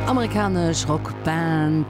Amerikanesch Rockband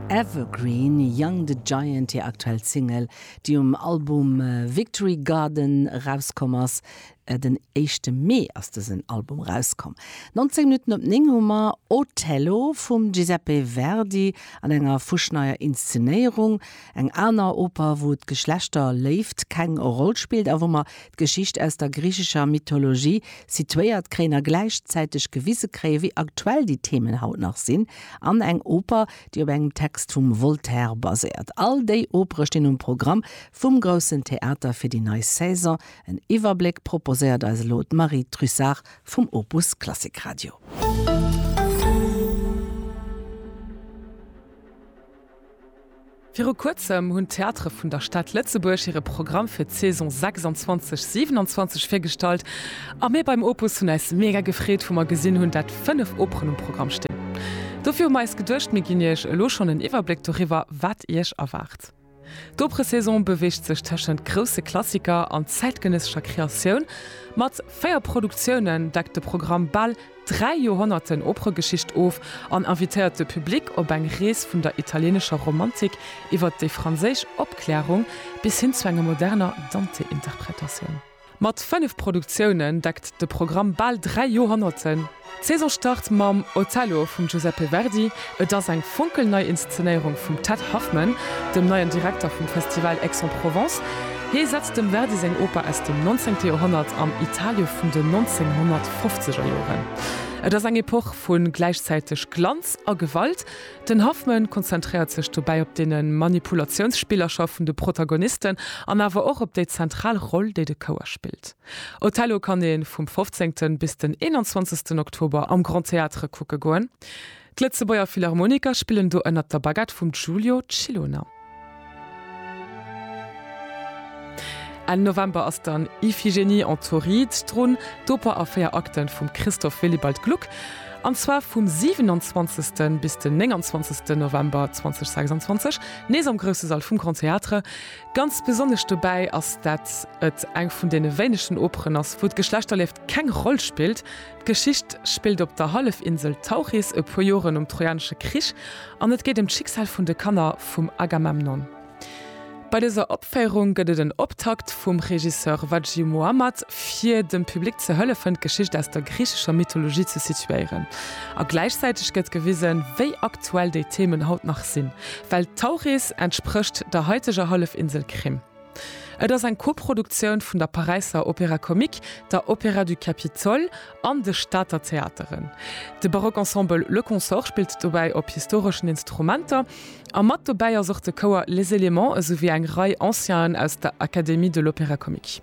Evergreen, Young the Giant hir aktuell Single, déi um Album Victory Garden erauskomm ass. Den éischte Mee ass dësen Album erauskomm. 19 Minutten op 9 hu mer Otello vum Giuseppe Verdi an enger fuschneier Inszenéierung. Eng aner Oper, wou d'Geschlechter Léift keng Roll spillt a wou mer D'Geschicht aus der griichescher Mythologie situéiert kréien a gläichzäiteg gewise kréien, wéi aktuell déi Themen haut nach sinn, an eng Oper, déi op engem Text vum Voltaire baséiert. All déi Opere stinn um Programm vum Groussen Theater fir déi nei Saison. En Iwwerbléck proposéiert eis elo d'Marie Trussart vum Opus Klassik Radio. Viru kuerzem hunn d'Theatere vun der Stad Lëtzebuerg hire Programm fir d'Saison 26, 27 virgestallt a mir beim Opus hunn eis mega gefreet wou mer gesinn hunn dat 5 Operen um Programm stinn. Dofir hu mer eis geduecht mir ginn iech elo schonn en Iwwerbléck doriwwer wat iech erwaart. D'Operesaison beweegt sech tëschent grousse Klassiker an zäitgenëssescher Kreatioun. Mat 4 Produktiounen deckt de Programm bal dräi Joerhonnerten Operegeschicht of an invitéiert de Public op eng Rees vun der italieenescher Romantik iwwert déi franséisch Opklärung bis hin zu enger moderner Dante-Interpretatioun. Mat fënnef Produktiounen deckt de Programm bal dräi Joerhonnerten. D'Saison start mam Otello vum Giuseppe Verdi. Et ass eng fonkelnei Inszenéierung vum Ted Huffman, dem neien Direkter vum Festival Aix-en-Provence. Hie setzt dem Verdi seng Oper aus dem Nonzéngte Joerhonnert am Italie vun den 1950er Joren. Et ass eng Epoch vu gläichzäiteg Glanz a Gewalt. Den Huffman konzentréiert sech dobäi op dee Manipulatiounsspillercher vun de Protagonisten an awer och op déi zentral Roll, déi de Chouer spillt. Otello kann ee vum 15. bis den 21. Oktober am Grand Théâtre kucke goen. D'Lëtzebuerger Philharmoniker spillen do ënnert der Baguette vum Giulio Ciloner. Enn November ass dann Iphigénie en Tauride drun, d'Oper a véier Akten vum Christoph Willibald Gluck, an zwar vum 27. bis den 29. November 2026, nees am grousse Sall vum Grand Théâtre. Ganz besonnesch dobäi ass, dat et eng vun deene wéinegen Operen ass, wou d'Geschlechterlieft keng Roll spillt. D'Geschicht spillt op der Hallefinsel Tauris, e puer Joren nom Trojanesche Krich, an et geet ëm d'Schicksal vun de Kanner vum Agamemnon. Bei dëser Opféierung gëtt et en Optakt vum Regisseur Wadji Mohammad, fir dem Public ze hëllefen, d'Geschicht aus der griichescher Mythologie ze situéieren. A gläichzäiteg gëtt gewisen, wéi aktuell déi Themen haut nach sinn, well Tauris entsprécht der haiteger Hallefinsel Krim. Et ass eng Koproduktioun vun der Paräisser Opéra Comique, der Opéra du Capitole an de Stater Theateren. De Baroque Ensemble Le Consort spillt dobäi op historeschen Instrumenter a mat dobäi ass och de Chouer Les Éléments esouwéi eng Rei Ancien'en aus der Académie de l'Opéra Comique.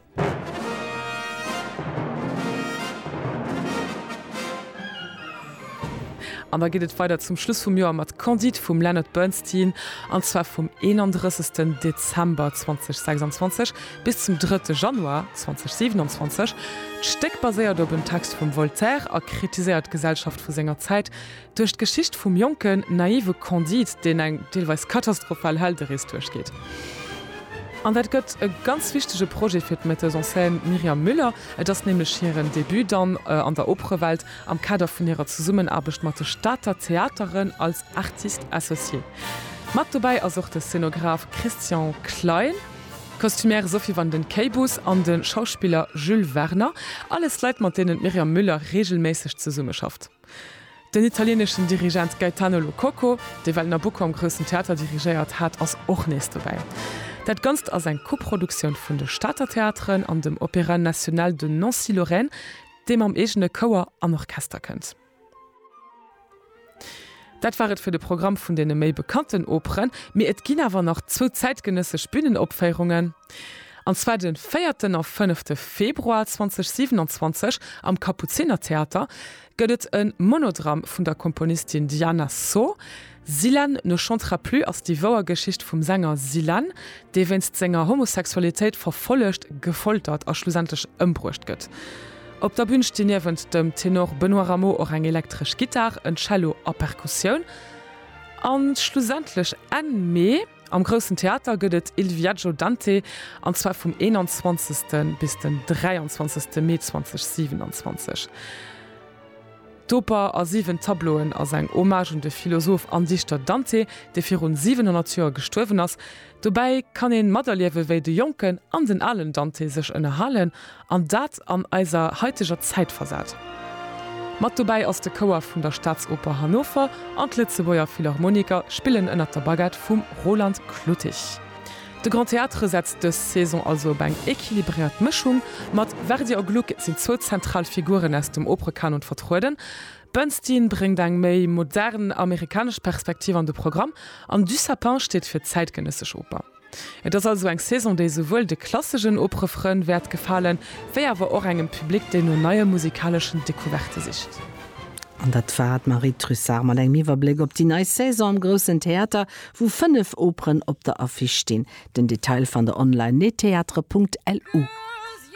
An da geet et weider zum Schluss vum Joer mat Candide vum Leonard Bernstein, an zwar vum 31. Dezember 2026 bis zum 3. Januar 2027. D'Stéck baséiert op en Text vum Voltaire a kritiséiert d'Gesellschaft vu senger Zäit duerch d'Geschicht vum jonken, naive Candide, deen eng deelweis katastrophal Helderees duerchgeet. An dat gëtt e ganz wichtege Projet fir d'Metteuse en scène Myriam Müller, et ass nämlech hiren Debut dann an der Operewelt. am Kader vun hirer Zesummenaarbecht mat de Stater Theateren als Artiste associé. Mat dobäi ass och de Szenograf Christian Klein, d'Kostümière Sophie van den Keybus an de Schauspiller Jules Werner, alles Leit, mat deenen d'Myriam Müller reegelméisseg zesummeschafft. Den italieneschen Dirigent Gaetano Lo Cocco, dee well Nabucco am Groussen Theater dirigéiert hat, ass och nees dobäi. Dat Ganzt ass eng Koproduktioun vun de Stater Theateren an dem Opéra National de Nancy-Lorraine. dee mam eegene Chouer an Orchester kënnt. Dat war et fir de Programm vun deene méi bekannten Operen, mee et ginn awer nach zwou zäitgenëssesch Bühnenopféierungen, an zwar de véierten a fënnefte Februar 2027. Am Kapuzinertheater gëtt et e Monodramm vun der Komponistin Diana Sor. Zillan ne chantera plus ass déi wouer Geschicht vum Sänger Zillan, dee wéinst senger Homosexualitéit verfollegt, gefoltert a schlussendlech ëmbruecht gëtt. Op der Bün stinn niewent dem Tenor Benoît Rameau och eng elektresch Gittar, en Cello a Perkussioun. A schlussendlech Enn Mee. Am Groussen Theater gëtt et Il Viaggio Dante, an zwar vum 21. bis den 23. Mee 2027. D'Oper a siwen Tableauen ass eng Hommage un de Philosoph an Dichter Dante, dee virun 700 Joer gestuerwen ass. Dobäi kann ee materliewen, wéi de jonken an den alen Dante sech ënnerhalen an dat an eiser haiteger Zäit versat. Mat dobäi ass de Chouer vun der Staatsoper Hannover an d'Lëtzebuerger Philharmoniker spillen ënnert der Baguette vum Roland Kluttich. De Grand Théâtre setzt dës Saison also op eng equilibréiert Mëschung. Mat Verdi a Gluck sinn zwou zentral Figuren aus dem Operekanon vertrueden, Bernstein bréngt eng méi modern amerikanesch Perspektiv an de Programm an Dussapin steet fir zäitgenëssesch Oper. Et ass also eng Saison déi souwuel de klassegen Oprëfferen wäert gefalen, wéi awer och engem Public deen no neie musikaleschen Decouverte sicht. An dat war d'Marie Trussart mat engem Iwwerbléck op déi nei Saison am Groussen Theater, wou 5 Operen op der Affiche stinn. Den Detail fannt der online, nettheatre.lu.